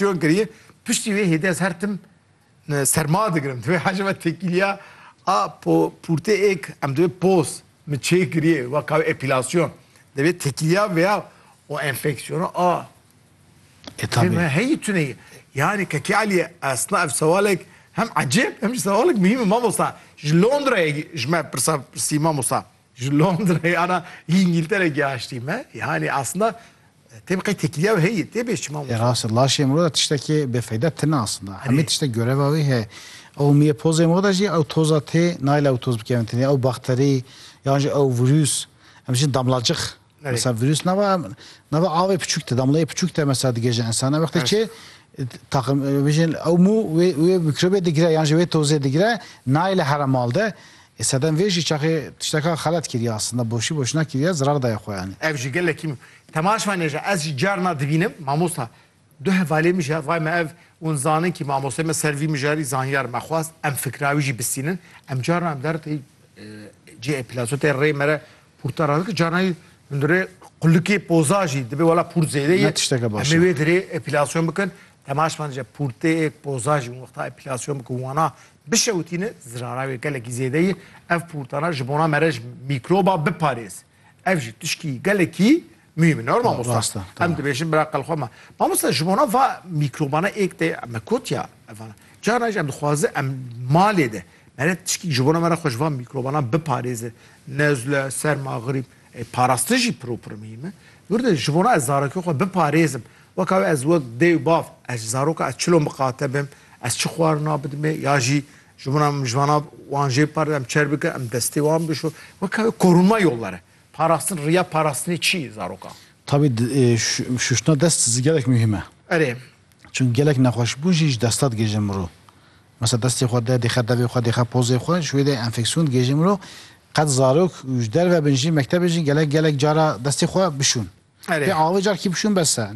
Çiyon kiriye, piştî wê hêdî ez her tim serma digirim. Divê hejê me têkîliya a pûrtê êk em divê poz min çê kiriye weka wê epîlasyon. Divê têkîliya vêya û enfeksiyona a Têtabî. Me heyî tune ye. Yanî Kekê Elî esna ev sewalek hem ecêb hem jî sewalek muhîm e mamosta. Ji Londrayê ji me pirsa pirsî mamosta. Ji Londra yana ji Îngîltere gihaştî me. Yanî aslında tê biqê têkiliya wê heye tê bê çima Ê rast e laşê miro de tiştekê bêfeyda tine aslında. Hemî Erê. tiştek göreva wê heye. Ew miyê pozê miro de jî ew toza tê nayla ew toz bikevin tenê ew bakterî yan jî ew vurûs em dijîn damlacix. Mesela virüs nava nava avê piçük te damlayê piçük te mesela dige ji insana wextê çê takım e, vijin ew mû wê wê mikrobê digire yan jî wê tozê digire nayê li here mal de e, sedem vê jî çaxê tişteka xelet kiriye aslında boşî boşina kiriye zirar daye xwe yanî. Ev jî gelekî min. Temaşvanê jî ez jî carna dibînim mamosta Du hevalê min jî hevayê me ev hûn zanin kî mamosteyê me ser vî mijarî zanyar me xwast em fikra wî jî bistînin. Em carna em der tê cihê plato tê rê me re pûrta re dikin carna jî hundir rê qulikê poza jî dibe wela pûrt zêde ye. Ne tişteke baş e. Em ê wê dirê epilasyon bikin. Temaş man dije pûrteyê poza jî wexta epilasyon bikin wana bişewitînin zirara wê gelekî zêde ye. Ev pûrtana ji bona me re ji mîkroba biparêz. Ev jî tişkî gelekî mühîm in. Normal Musa. Rast e, tamam. Em dibêjin bira qel xwe me. Ma Musa ji bona va mîkrobana êk tê me kotiya evan. Carna jî em dixwaze em malê de mere tişkî ji bona me re xwe ji van mîkrobanan biparêze. Nezle, serma, grîp. Ê parastin jî pir û pir muhîm e. Dûrde ji bona ez zarokê xwe biparêzim. Weka wê ez wek dê û bav ez ji zaroka ez çilo miqate bim, ez çi xwarina bidimê ya jî Ji bo em ji vana wan jê parê em çer bikin, em destê wan bişo. Weke korûnma yollar e. Parastin, riya parastinê çi ye zarokan? Tabî şuştina dest zî gelek muhîm e. Erê. Çunk gelek nexweşbûn jî ji desta digihêje mirov. Mesela destê xwe de dêxe devê xwe, dêxe pozê xwe, ji wê de enfeksîyon digihêje mirov. Qet zarok û ji derve bin jî mektebê jî gelek gelek cara destê xwe bişûn. Pê avê carkî bişûn bes e.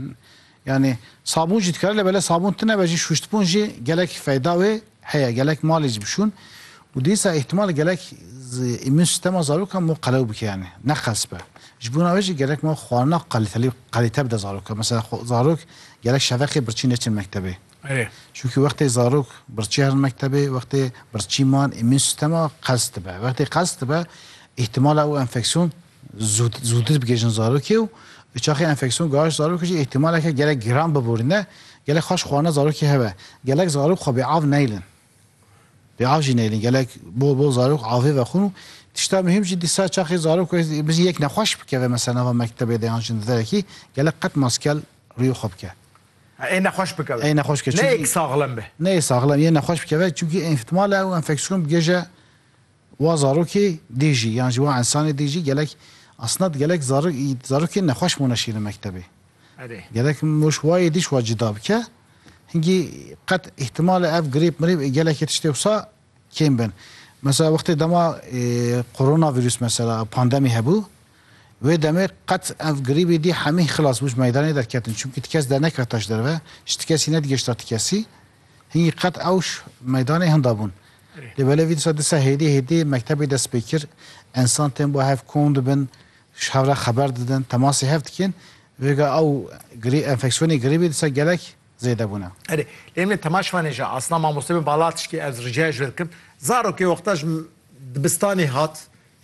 Yanî sabûn jî dikare lê belê sabûn tune be jî şûştbûn jî gelek feyda wê heye. Gelek malê jî bişûn û dîsa îhtîmal e gelek îmûn sîstema zarokan mû qelew bike yanî neqels be. Ji bo wê jî gerek ma xwarina qelîtelî qelîte bide zarok. Mesela zarok gelek şeveqê birçî neçin mektebê. Çunkî wextê zarok birçî herin mektebê, wextê birçî man îmûn sîstema qels dibe. Wextê qels dibe îhtîmala ew enfeksîyon zûtir bigihîjin zarokê û bi çaxê enfeksyon gihişt zarokê jî îhtîmaleke gelek giran biborîne, gelek xwe ji xwe ne zarokê hebe. Gelek zarok xwe bêav neyilin. Bêav jî neyilin. Gelek bol bol zarok avê vexwin û tişta muhîm jî dîsa çaxê zarok bijî yek nexweş bikeve mesela nava mektebê de yan jî di derekî gelek qet maskel rûyê xwe bike. Ê nexweş bikeve. Ê nexweş bike. Neyê ki saxlem be. Neyê saxlem, yê nexweş bikeve çimkî îhtîmala ew enfeksyon bigihîje. Wa zarokê dê jî yan jî wa însanê dê jî gelek esnad gelek zarokên nexweş mûne şîrin mektebê. Gelek mûş wa yê dî şwa cida bike. Hingî qet îhtimal e ev grîp mirîp ê gelekê tiştê wisa kêm bin. Mesela wextê dema korona vîrûs mesela pandemî hebû wê demê qet ev grîbê dî hemî xilas bû ji meydanê derketin. Çimkî ti kes dernekevta ji derve, ji ti kesî nedigihişta ti kesî. Hî qet ewş meydanê hinda bûn. Lê belê vî disa disa hêdî hêdî mektebê dest pê kir. Ensan tên bo hev kom dibin, ji hev re xeber didin, temasê hev dikin. Vêga ew grî enfeksiyonê grîbê disa gelek zêde bûne. Erê, lê em ê temaş vanê jî asna mamoste bên bala tişkê ez rica ji we dikim. Zarokê wexta ji dibistanê hat,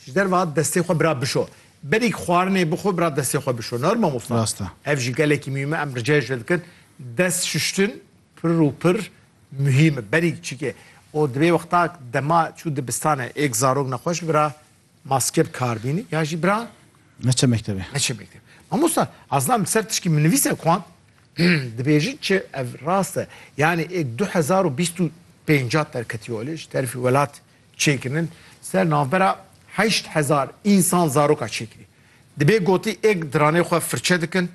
ji derve hat destê xwe bira bişo. Berî xwarinê bixwe bira destê xwe bişo. Nor mamosta? Rast e. Ev jî gelekî muhîm e. Em ricayê ji we dikin dest şuştin, Pir û pir muhîm e berî çikê û divê wexta dema çû dibistanê êk zarok nexweş bira maske bi kar bînî ya jî bira Neçe mektebê. neçe mekteb. Mamosta Azlam li ser tişkî min nivîse kuan dibêjin çi ev rast e yanî êk du hezar û bîst û pênc hat derketiye olê ji terfî welat çêkirinin ser navbera heşt hezar însan zaroka çêkirî. Dibê gotî êk diranê xwe firçe dikin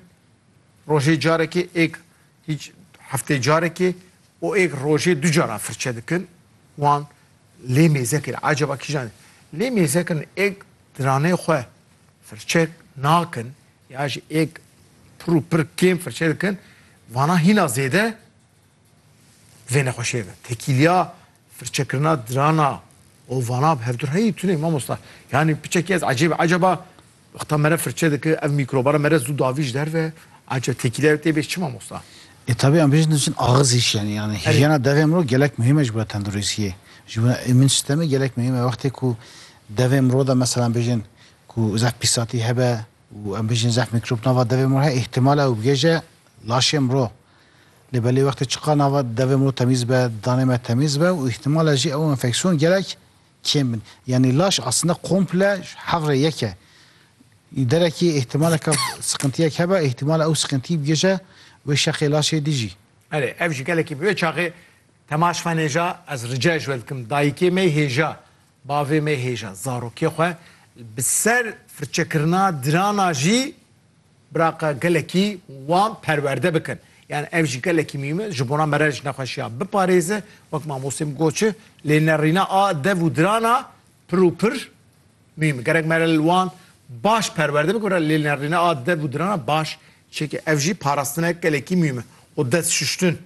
rojê carekê êk Hîç heftê carekê û êk rojê du cara firçe dikin wan lê mêzekir acaba kîjan lê mêzekin êk diranê xwe firçe nakin ya jî êk pir û pir kêm firçe dikin vana hîna zêde vê nexweşê de tekîliya Firçekirina dirana û vana bi hevdu reyî tune mamosta. Yanî piçekî ez ecêb e. Ecaba wexta mere firçe dike ev mîkroba re mere zû davî ji derve ece têkîlê re tê bê çi mamosta? E tabi em bêjin diçin axiz îş yanî yanî hîjyena devê mirov gelek muhîm e ji bo tenduristiyê. Ji bo îmûn sîstemê gelek muhîm e. Wextê ku devê mirov de mesela em bêjin ku zehf pîsatî hebe û em bêjin zehf mîkrob nava devê mirov he îhtimal e ew bigêje laşê mirov. Lê belê wextê çiqa nava devê min û temîz be, danê me temîz be û îhtimala jî ew enfeksîyon gelek kêm bin. Yanî laş aslinde komple ji hev rê yek e. Derekî îhtimaleke siqintiyek hebe, îhtimala ew siqintî bigihije wê şexê laşê dî jî. Erê, ev jî gelekî bi wê çaxê temaş xwenêja, ez rica ji we dikim, dayikê me hêja, bavê me hêja, zarokê xwe li bi ser firçekirina dirana jî, Biraqa gelekî wan perwerde bikin. Yan ev jî gelekî mîm e, ji bona mere ji nexweşiya biparêze, wek mamostê min got çi, lê nerîna a dev û dirana pir û pir mîm e. Gerek mere li wan baş perwerde bikin re lê nerîna a dev û dirana baş çêke. Ev jî parastinek gelekî mîm e û dest şuştin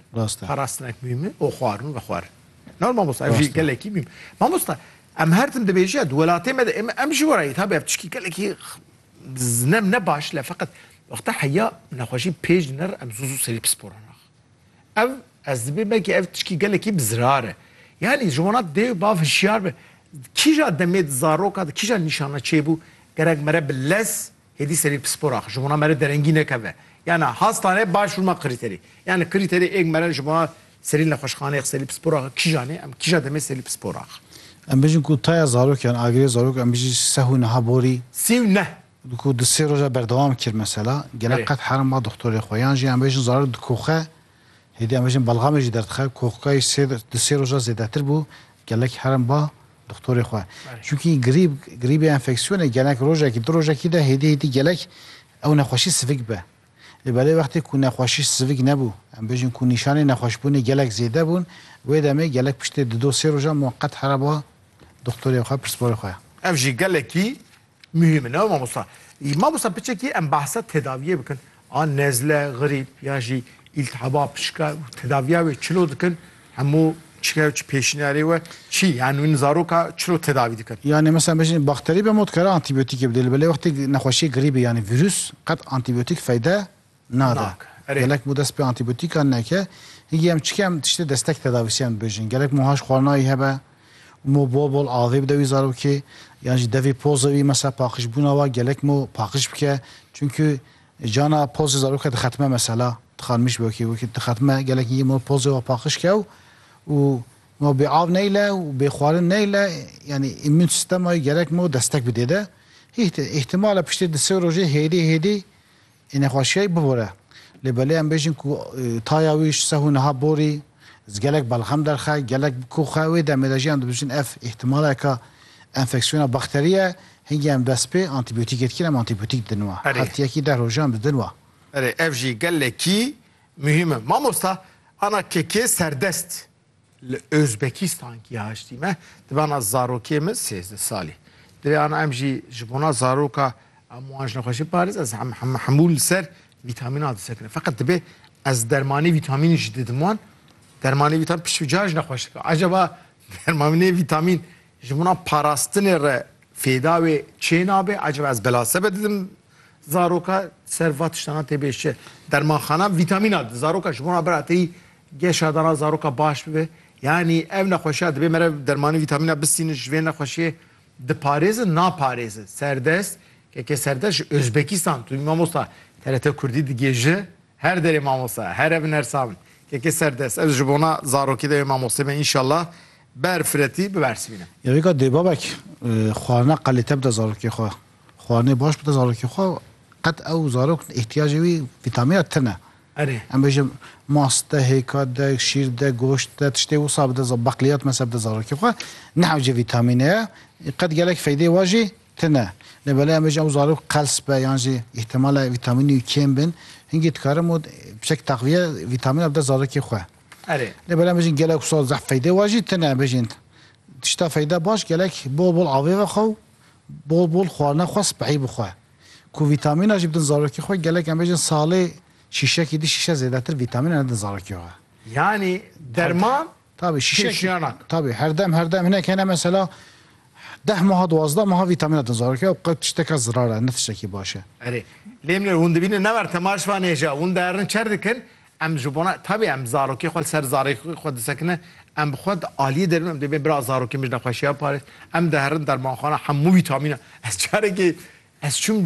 parastinek mîm e û xwarin û vexwarin. Nor mamosta ev jî gelekî mîm e. Mamosta em her tim dibêjin ya di welatê me de em ji we re yê tabi ev tiştî gelekî Zinim ne baş le feqet wexta heya nexweşî pêj nir em zû zû serî pispora nax. Ev ez dibê belkî ev tişkî gelekî bi zirar e. Yanî ji wana dê û bav hişyar be. Kîja demê di zaroka de kîja nîşana çêbû gerek mere bi lez hêdî serî pispora xwe. Ji wana mere derengî nekeve. Yanî hastane baş rûma krîterî. Yanî krîterî êk mere ji wana Serî li nexweşxaneyê Xselî Pispor axa kîjan e? Em kîja demê Selî Pispor axa? Em bêjin ku taya zarok yan agirê zarok em bijî seh û niha borî. Sî û neh. Ku di sê roja berdewam kir mesela. Gelek qet herim ma doxtorê xwe. Yan jî em bêjin zarok dikoxe. Hêdî em bêjin belgamê jî derdixe. Koxkayî sê di sê roja zêdetir bû. Gelek herim ba doxtorê xwe. Çunkî grîb grîbê enfeksiyonê gelek rojekî du rojekî de hêdî hêdî gelek ew nexweşî sivik be. Lê belê wextê ku nexweşî sivik nebû, em bêjin ku nîşanên nexweşbûnê gelek zêde bûn, wê demê gelek piştê di do sê rojan wan qet here ba doxtorê xwe, pirsvorê xwe. Ev jî gelekî muhîm in. Ew mamosta. Î mamosta piçekî em behsa tedaviyê bikin. A nezle, grîp ya jî îltihaba pişka û tedaviya wê çilo dikin. Hemû çike û çi pêşniyarê we çi yani wîn zaroka çilo tedavî dikin? Yani mesela bejin bakterî be mod kare antîbiyotîkê bidê li belê wextê nexweşiyê grîbê yani vîrus qet antîbiyotîk feyde nade. Gelek bo dest pê antîbiyotîkan neke hingî em çike em tiştê destek tedavîsiyan bibêjin. Gelek moha ji xwarinayî hebe û mo bol bol avê bide wî zarokê yan jî devê poze wî mesela paqijbûna wa gelek mo paqij bike. Çimkî Cana pozê zaroke dixetime mesela dixanimîş wekî wekî dixetime gelekî yê ma pozê wa paqij kew û ma bê av neyle û bê xwarin neyle yanî îmûn sîstema yê gerek ma destek bidê de hît e îhtîmal e piştê di sê rojê hêdî hêdî ê nexweşîya yê bibore. Lê belê em bêjin ku taya wî ji seh û niha borî Ji gelek belxem derxe, gelek bi ku xwe wê demê de jî em dibêjin ev îhtimaleke enfeksiyona bakterî ye, hingî em dest pê antîbiyotîkê dikin, em antîbiyotîk didin we. Hefteyekî deh rojan em didin we. Erê ev jî gelekî muhîm e. Mamosta ana KK serdest li Ozbekistan kî haştî me di bana zarokê min sêzdeh salî. Di rê ana em jî ji bona zaroka em wan ji nexweşî parêz ez hemû li ser Vîtamîn a disekine. Feqet dibe ez dermanê vîtamînî jî didim wan. Dermanê vîtamîn piştî ca jî nexweş dike. Acaba dermanê vîtamîn ji min a parastinê re fêda wê çê nabe? Acaba ez bela sebe didim zaroka ser va tiştana tê bêj çi? Dermanxana vîtamîn a di zaroka ji min a bira têyî geşa dana zaroka baş bibe. Yanî ev nexweşiya dibe mere dermanê vîtamîn a bistînin ji vê nexweşiyê Diparêzin naparêzin serdest keke serdest ji Ozbekistan tu bî mamosta TRT Kurdî digihêji her derê mamosta her ev nersa min keke serdest ez ji bona zarokê de wê mamostê me înşallah ber firetî bibersivîne. Ya wêka dê babek xwarina qelîte bide zarokê xwe xwarinê baş bide zarokê xwe qet ew zarok îhtiyacê wî vîtamîna tune. Erê. Em bêjin mast de, hêka de, şîr de, goşt de, tiştê wisa bide za beqliyat mese bide zarokê xwe. Nehewce vîtamîne ye. Qet gelek feydeyê wan jî tune. Lê belê em bêjin ew zarok qels be yan jî îhtîmal e vîtamînê wî kêm bin. Hingî dikarim û piçek teqviye vîtamîna bide zarokê xwe. Erê. Lê belê em bêjin gelek wisa zehf feydeyê wan jî tune. Em bêjin tişta feyda baş gelek bol bol avê vexwe û bol bol xwarina xwe spehî bixwe. Ku vîtamîna jî bidin zarokê xwe gelek em bêjin salê şîşekî di şîşe zêdetir vîtamîna nedin zarokê xwe. Yanî derman Tabi şîşek kêşiyanak. Tabi herdem herdem hinek hene mesela deh maha duwazdeh maha vîtamîna din zarokê ew qet tişteka zirar e ne tiştekî baş e. Erê. Lê min hûn dibînin ne ber tema ji van êja hûn diherin çer dikin Em ji bona tevî em zarokê xwe li ser zarê xwe disekinin, em bi xwe di aliyê de bin, em dê bê bira zarokê min ji nexweşiya parêz, em diherin dermanxana hemû vîtamînan. Ez carekê ez çûm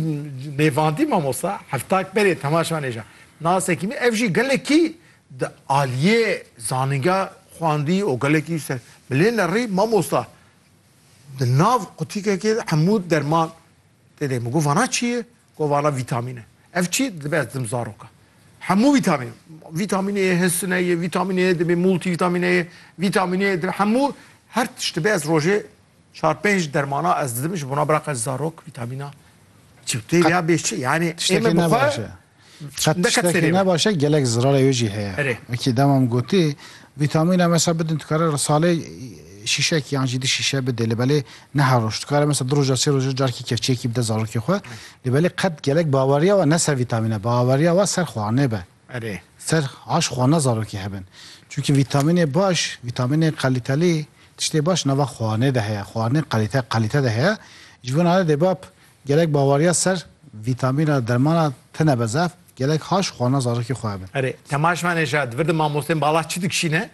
nêvandî mamosta heftak berê temaşa nêja nasekî min ev jî gelekî di aliyê zanîngeha xwendî û gelekî ji ser bilê nerî mamosta di nav qutîkekê de hemû derman tê de min got vana çi ye? Kovana vîtamîn e. Ev çi dibe ez didim zaroka. Hemû vîtamîn. Vîtamîn Ê, hisine ye, vîtamîn Ê dibê, multivîtamîn Ê, vîtamîn Ê dibê. Hemû her tişt dibe ez rojê çar pênc dermana ez didim ji bona biraq ez zarok vîtamîna çi tê Qet- ya bêj çi. Yanî Tiştekî ême ne bixwe baş e. Qet neket tiştekî serê ne me. baş e gelek zirarê wê jî heye. Erê. Wekî demam gotî Vîtamîne mesela bidin dikare salê şîşek yan jî di şîşe bidê li belê neha roj dikare mesela di roja sê roja carkî kevçeyekî bide zarokê xwe li belê qet gelek baweriya we ne ser vîtamîne baweriya we ser xwarinê be. Erê. Ser aş xwarina zarokê hebin. Çunkî vîtamînê baş, vîtamînê qelîtelî tiştê baş nava xwarinê de heye. Xwarinê qelîte qelîte de heye. Ji bo nane dê bab gelek baweriya ser vîtamîna dermana tine be zaf. Gelek haş xwana zarokê xwe hebin. Erê, temaşma neja, divir di mamostên bala çi dikişîne,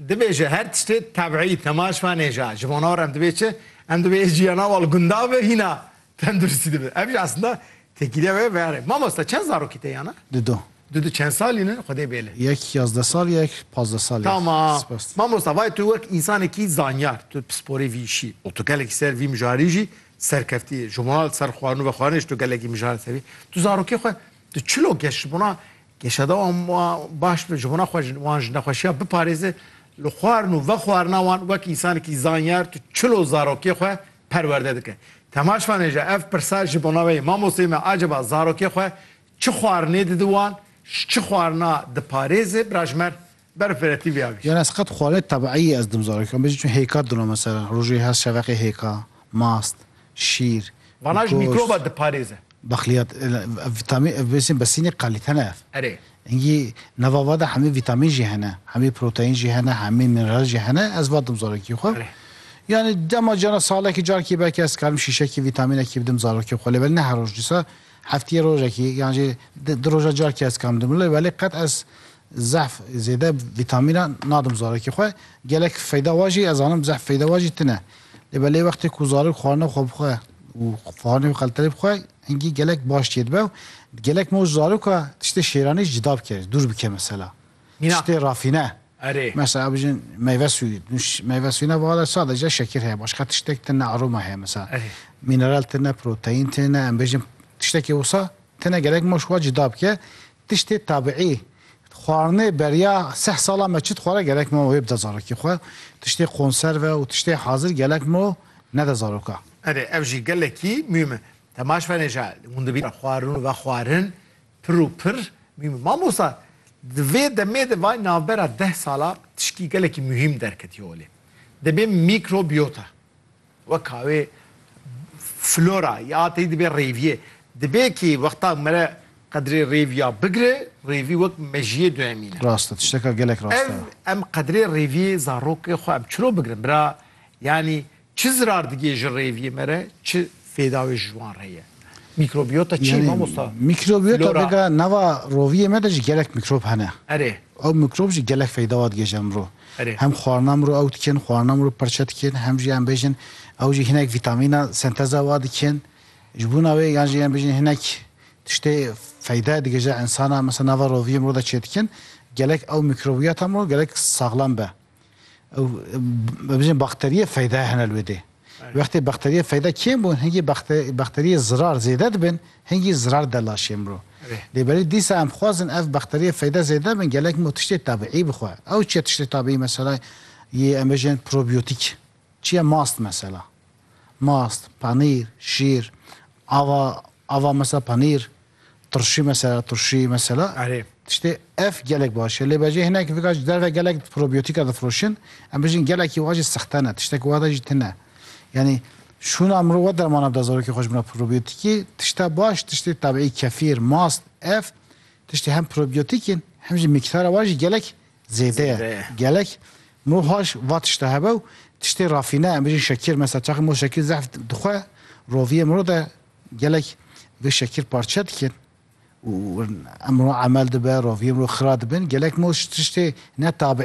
dibêje her tiştê tebîî, temaşma neja, ji bona wir em dibê çi, em dibê jiyana wal gundan ve hîna tenduristî dibe. Ev jî aslında têkîliya wê ve erê. Mamosta çend zarokî te yana? Du du. Du du çend salî ne? Xwedê bêle. Yek yazdeh sal yek pazdeh sal. Tamam. Spas. Mamosta vay tu wek însanekî zanyar, tu pisporê vî îşî û tu gelekî ser vî mijarî jî Serkeftî, ji mal, ser xwarin û ve xwarinê ji to gelekî mijare tevî. Tu zarokê xwe tu çilo geş ji bona geşeda wan baş bi, ji bona xwe ji wan ji nexweşiya biparêze li xwarin û ve xwarina wan wek însanekî zanyar tu çilo zarokê xwe perwerde dike. Temaş vanê ji ev pirsa ji bona we ye, Mamosteyê me aceba zarokê xwe çi xwarinê didi wan, ji çi xwarina diparêze? Birajmer Berf vere tî vê avê. Yani ez qet xwarinê tebiîyî ez dim zarokê xwe bêjim çün hêka dino mesela rojê her şeveqê hêka, mast, şîr, Vana ji mîkroba diparêze. Bexliyat vîtamîn ev bêsîn besînê qelîte ne ev. Erê. Engî nava vade hemî vîtamîn jî hene, hemî proteîn jî hene, hemî mineral jî hene ez va dim zarokî xwe. Erê. Yani dema cana salekî carkî belkî ez karim şîşekî vîtamînekî bidim zarokê xwe lê belê ne her roj dîsa heftîyê rojekî yan jî di roja carkî ez karim dim lê belê qet ez Zehf zêde vîtamîna nadim zarekî xwe. Gelek feyda wa jî ez zanim zehf feyda wa jî tune. Lê belê wextê ku zarok xwarina xwe bixwe û xwarinê xelterê bixwe hingî gelek baş tê dibe û gelek me û zaroka tiştê şêranê jî cuda bike, dûr bike mesela. Tiştê rafîne. Erê. Mesela bijin meyve sûyî. Meyve sûyîna vara sadece şekir heye. Başka tiştek tune aroma heye mesela. Erê. Mineral tune, proteîn tune, em bêjin tiştekê wisa tune gelek me û ji xwe cuda bike. Tiştê tabiî, xwarinê beriya seh sala me çi dixware gerek me wê bide zarokê xwe, tiştê konserve û tiştê hazir gelek me nede zaroka. Erê ev jî gelekî muhîm e. Temaş venê ja hûn dibî ra xwarin û vexwarin pir û pir muhîm e. Mamosta di vê demê de vay navbera deh sala tişkî gelekî muhîm derketiye holê. Dibê mîkrobiyota. Weka wê flora ya tey dibe rêviyê. Dibe ki wexta mere qedrê rêviya bigire, rêvî wek mejiyê duemîne. Rast e, tişteka gelek rast e. Ev em qedrê rêviyê zarokê xwe em çiro bigirin bira? Yanî çi zirar digê ji rêviyê mere, çi fêda wê ji wan re ye? Mîkrobiyota çi ye mamosta? Mîkrobiyota vêga nava roviyê me de jî gelek mîkrob hene. Erê. Ew mîkrob jî gelek feyda wa digihêje miro. Hem xwarina miro ew dikin, xwarina miro pirçe dikin, hem jî em bêjin ew jî hinek vîtamîna senteza wa dikin. Ji bona wê yan jî em bêjin hinek tiştê feyda digihêje insana, mesela nava roviyê miro de çêdikin. Gelek ew mîkrobiyata miro gelek saxlem be. Ew bibêjin bakteriyê feyda hene li wê dê. Wextê bakteriyê feyda kêm bûn hingî bakteriyê zirar zêde dibin hingî zirar de laşê mirov. Lê berî dîsa em xwazin ev bakteriyê feyda zêde bin gelek mirov tiştê tabîî bixwe. Ew çi ye tiştê tabîî mesela yê em bêjin probiyotîk. Çi ye mast mesela? Mast, panîr, şîr, ava, ava mesela panîr, tirşî mesela, turşî mesela. Erê. Tiştê ev gelek baş e. Lê bejê hinek vika ji derve gelek probiyotika difiroşin. Em bijîn gelekî wa jî sexte ne, tiştek wate jî tune. Yanî şûna mirov we dermana bida zarokê xwe ji mina probiyotikî. Tişta baş, tiştê tabiî kefîr, mast, ev tiştê hem probiyotik in hem jî mîktara wan jî gelek zêde ye gelek mohaş va tişte hebe û tiştê rafîne em bijîn şekir mesela çaxê moh şekir zehf dixwe roviyê miro de gelek vê şekir parçe dikin û emro emel dibe roviyê miro xira dibin gelek moh tiştê ne tabiî